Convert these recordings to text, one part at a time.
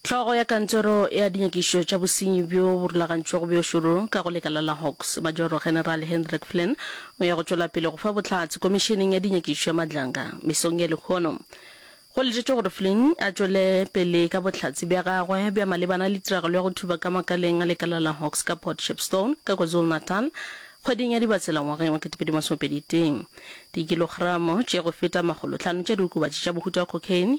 Hlogo ya Kantoro ya Dinyakišišo tša Bosenyi bjo bo Rulagantšwego bjo Šoro ka go Lekala la Hawks, Majoro-General Hendrik Flynn, o ya go tšwela pele go fa bohlatse Komišeneng ya Dinyakišišo ya Madlanga mesong ya lehono. Go letetšwe gore Flynn a tšwele pele ka bohlatse bja gagwe bja malebana le tiragalo ya go thuba ka makaleng a lekala la Hawks ka Port Shepstone ka KwaZulu-Natal kgweding ya Dibatsela ngwageng wa 2021. Dikilogramo tše go feta makgolohlano tša diokobatši tša mohuta wa cocaine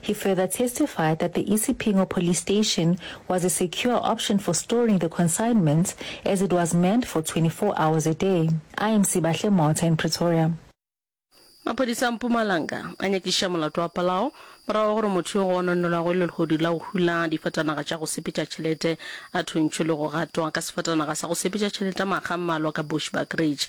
He further testified that the Isipingo Police Station was a secure option for storing the consignments as it was manned for 24 hours a day. I am Sibahle Motha in Pretoria. Maphodisa a Mpumalanga a nyakiša molato wa palao morago ga gore motho yo go ononelwago e le lehodu la go hula difatanaga tša go sepetša tšhelete a thuntšhwe le go gatwa ka sefatanaga sa go sepetša tšhelete makga a mmalwa ka Bushbuck Ridge.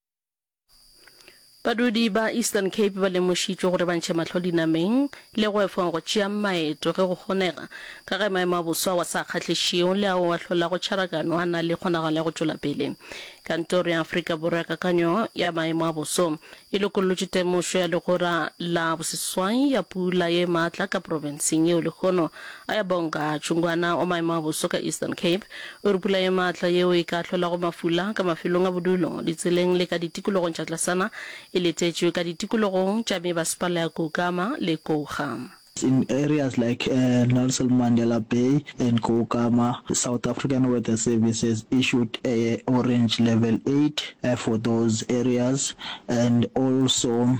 Badudi ba Eastern Cape ba lemošitšwe gore ba ntšhe mahlo dinameng le go efong go tšea maeto ge go kgonega, ka ge maemo a boso ao a sa kgahlišego le ao a hlolago tšharagano a na le kgonagalo ya go tšwela pele. Kantoro ya Afrika Borwa ya Kakanyo ya Maemo a Boso e lokollotše temošo ya legora la boseswai ya pula ye matla ka profenseng yeo lehono Ayabonga Chungwana wa maemo a boso ka Eastern Cape o re pula ye maatla yeo e ka ahlolago mafula ka mafelong a bodulo, ditseleng le ka ditikologong tša tlasana e letetšwe ka ditikologong tša mebasepala ya Koukama le Kouga. In areas like Nelson Mandela Bay and Koukama, South African Weather Service has issued a orange level eight for those areas and also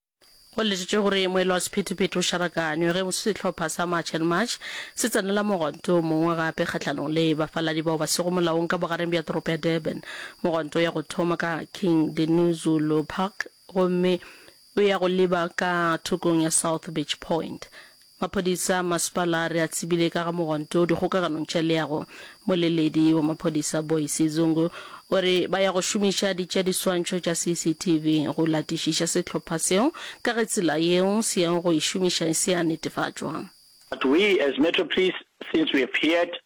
Go letetšwe gore moelo wa sephethephethe o šarakanywe ge sehlopha sa March and March se tsenela mogwanto o mongwe gape kgahlanong le bafaladi bao ba sego molaong ka bogareng bja toropo ya Durban. Mogwanto o ya go thoma ka King Dinuzulu Park gomme o ya go leba ka thokong ya South Beach Point. Maphodisa a masepala a re a tsebile ka ga mogwanto dikgokaganong tša leago. Moleledi wa maphodisa Boyce Zungu o re ba ya go šomiša ditšeadiswantšho tša CCTV go latišiša sehlopha seo ka ge tsela yeo se yago go e šomiša e se ya netefatšwa. But we as Metro Police since we have heard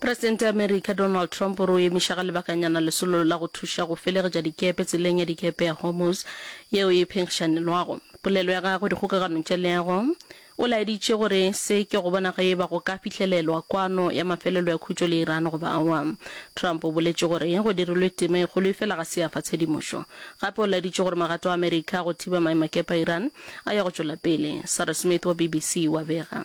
Presidente ya Amerika Donald Trump o re o emiša ga lebakanyana lesolo la go thuša go felegetša dikepe tseleng ya dikepe ya Hormuz yeo e phenkgišanelwago polelo ya gagwe dikgokaganong tša leago. O laeditše gore se ke go bona ge e ba go ka fihlelelwa kwano ya mafelelo ya khutšo le Iran goba awa. Trump o boletše gore go dirilwe tema e kgolo efela ga se ya fa tshedimošo. Gape o laeditše gore magato a Amerika a go thiba maemakepe a Iran a ya go tšwela pele. Sarah Smith wa BBC o a bega.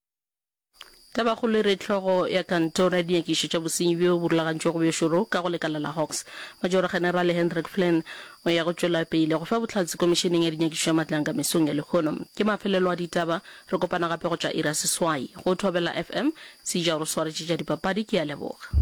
Tabakgolo e re hlogo ya kantoro ya dinyakišo tša bosenyi bjo bo rulagantšwego bjo šoro ka go lekala la Hawks, Majoro-Generale Hendrik Flynn, o ya go tšwela pele go fa bohlatse Komišeneng ya Dinyakišo tša Matlanka mesong ya lehono. Ke mafelelo a ditaba. Re kopana gape go tšwa iri ya seswai. Go Thobela FM, Seija o re swaretše tša dipapadi. Ke a leboga.